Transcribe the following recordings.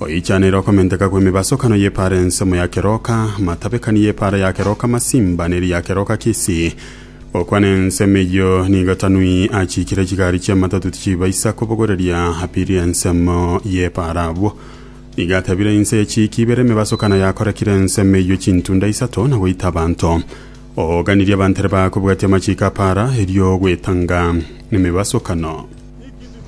Oichaneire okomenteka kw'emebasokano y'epaara ensemo ya keroka, amatabekani y'epaara ya keroka masimba ne ria keroka kisii. Okwana ensemo eyio nigo Tanui achiikire chigari chi'amatatu tichibaisa kobogoreria apirie ensemo y'epaara abwo. Nigo atebire inse ye chiiki ibere emebasokano yakorekire ensemo eyio chintunda isato na goita abanto. Ooganirie abantere baakobwatia amachiiko a paara erio ogwetanga emebasokano.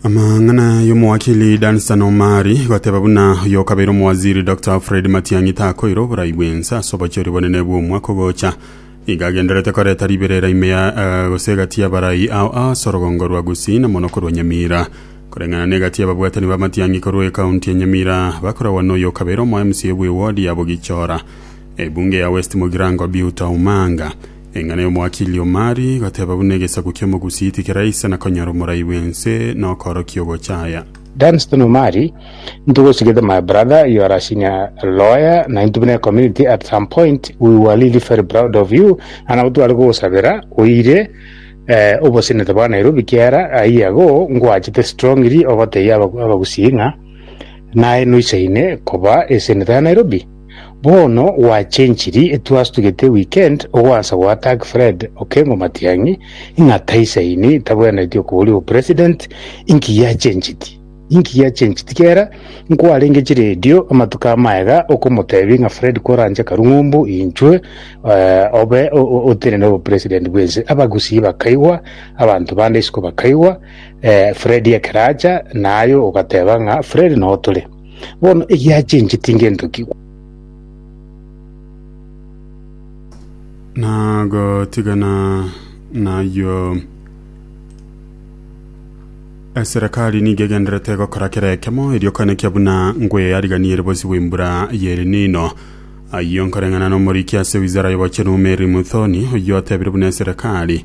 Amang'ana y'omowakili Dunstan Omari goteba buna oyokabeire omowaziri Dr Fred Matiang'i takoire oborai bw'ense ase obochori bonene bw'omwaka ogocha, iga agendererete koreta riberera ime ya eh, gose egati y'abarai ao ase orogongo rwa Gusii na mono korwa Nyamira. Koreng'ana n'egati y'ababwatani ba Matiang'i korwa ekaunti ya Nyamira bakoragwa n'oyokabeire omo-MCA bw'ewodi ya Bogichora, ebunge ya West Mogirango Biuta Omanga. Eng'ana y'omwaka Iliomari igateba buna egesaku ki'omogusi tikeraisa na konyara omorai bw'ense na okoorokia ogochaya. Dunstan Omari, Into gosi gete my brother, you are a senior lawyer na into buna ecommunity at some point we were really very proud of you and nabo tware kogosabera oire eh, obosenete bwa Nairobi kiara aye ago ngoachete strongly ogotebia abagusii ng'a naye noisaine koba eseneta ya Nairobi. Bono gwachenchiri twastugete weekend ogoansa goattack Fred Okengo Matiang'i ng'a taisaini tabwenereti okoboria obopresident inki giachenchiti? Inki giachenchiti kera nkwarenge chiredio amatuko amaye iga okomotebi ng'a Fred koranche karung'umbu inchwe eh, obe o- o- otenene obopresident bwense abagusii bakaigwa abanto bande isiko bakaigwa eh, Fred ekeracha naye ogateba ng'a Fred notore Bono egiachenche tingentokigwa. nagotigana nayio eserekari nigo egenderete gokora kera ekemo erio kane kia buna ngweariganiere bosi bw'embura y'elinino ayio nkoreng'ana n'omoriki ase wizara y'obochenu meri muthoni oyio otebire buna eserekari